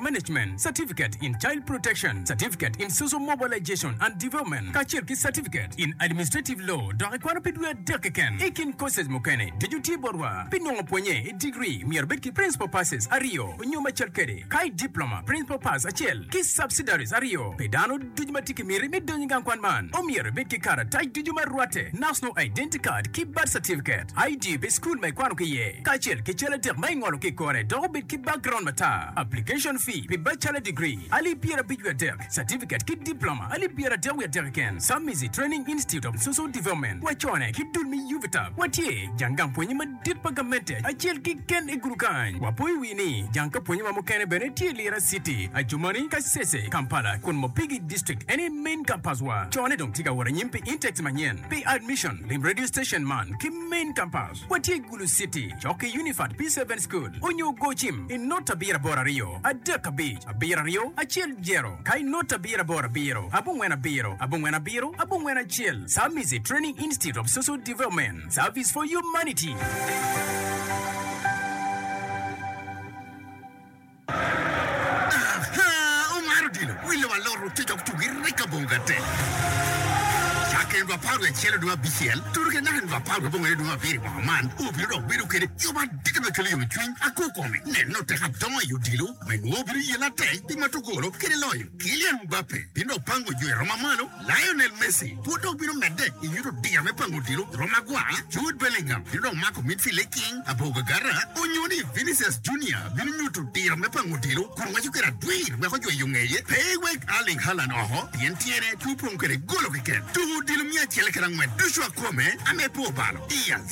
Management Certificate in Child Protection, Certificate in Social Mobilization and Development, kacel ki Certificate in Administrative Law, dok ikwano pi dwe adek keken. I kin courses mukene, ducu tye botwa. Pi nongo pwonye i degree, myero ibed ki Principal Passes aryo nyo macel kede, ka i Diploma, Principal Pass acel ki Subsidiaries aryo pi dano. Ducu ma tye ki miti me donyo i gang kwan man omyero ibed ki karatac ducu ma rwatte, National Identity Card ki Birth Certificate, ID pi cukul ma ikwano ki iye, kacel ki cal adek ma ingolo ki i kore dok obed ki background matar. Application fee pi Bachelor Degree, alip pyerabic wiye adek, Certificate ki Diploma, alip pyeradek wiye adek keken, Submizi Training Institute of Social Development, wacone ki dul me UVITA, watye jang gang pwonye madit. Tit pa gamente acel kiken i gudu kany. Wapo i wi ni jang ka pwonye wa mukene bene tye i Lira city, Adjumani, Kasese, Kampala, kun Mopigi district en aye main campus wa. Co ne dong tye ka wot anyim pi intakes manyen. Pi admission lim radio station man ki main campus. Watye i Gulu city, cok ki Unifat P-Seven school onyo go cim i not abiro aboro aryo adek abic abiro aryo acel jero ka i not abiro aboro abiro abongwen abiro abongwen abiro abongwen acel. Samizi Training Institute of Social Development. Service for Humanity. Aha! Omar odilo wille wa loro ote dok tugo i rek abongo gate. Cakke en dwe apar wiye acel dwe abicel, tutu ki naka en dwe apar wiye abongo aye dwe abiro i mwaka man, wabino dok bedo kede yub adada ma kelo yomcwiny. Akur kome neno ote ka dongo i odilo me nwo bino yela atek pi matugolo kede loyo. Kylian Mbappe bino dok pango jo i rom ma malo. Lionel Messi pud dong bino medde i nyut odira me pango odilo i Roma gwa. Jude Bellingham bino dong mako midfielder king Abou Gagara onyo ni Vinicius Junior bino nyuto odira me pango odilo kun waco kwede adwir wek ojweyo ngeye pe ewek Erling Haaland oko pien tyene pe opong kwede golo keken. Tuko odilo miya acel kede angwen ducu akome ame po balo. Diaz.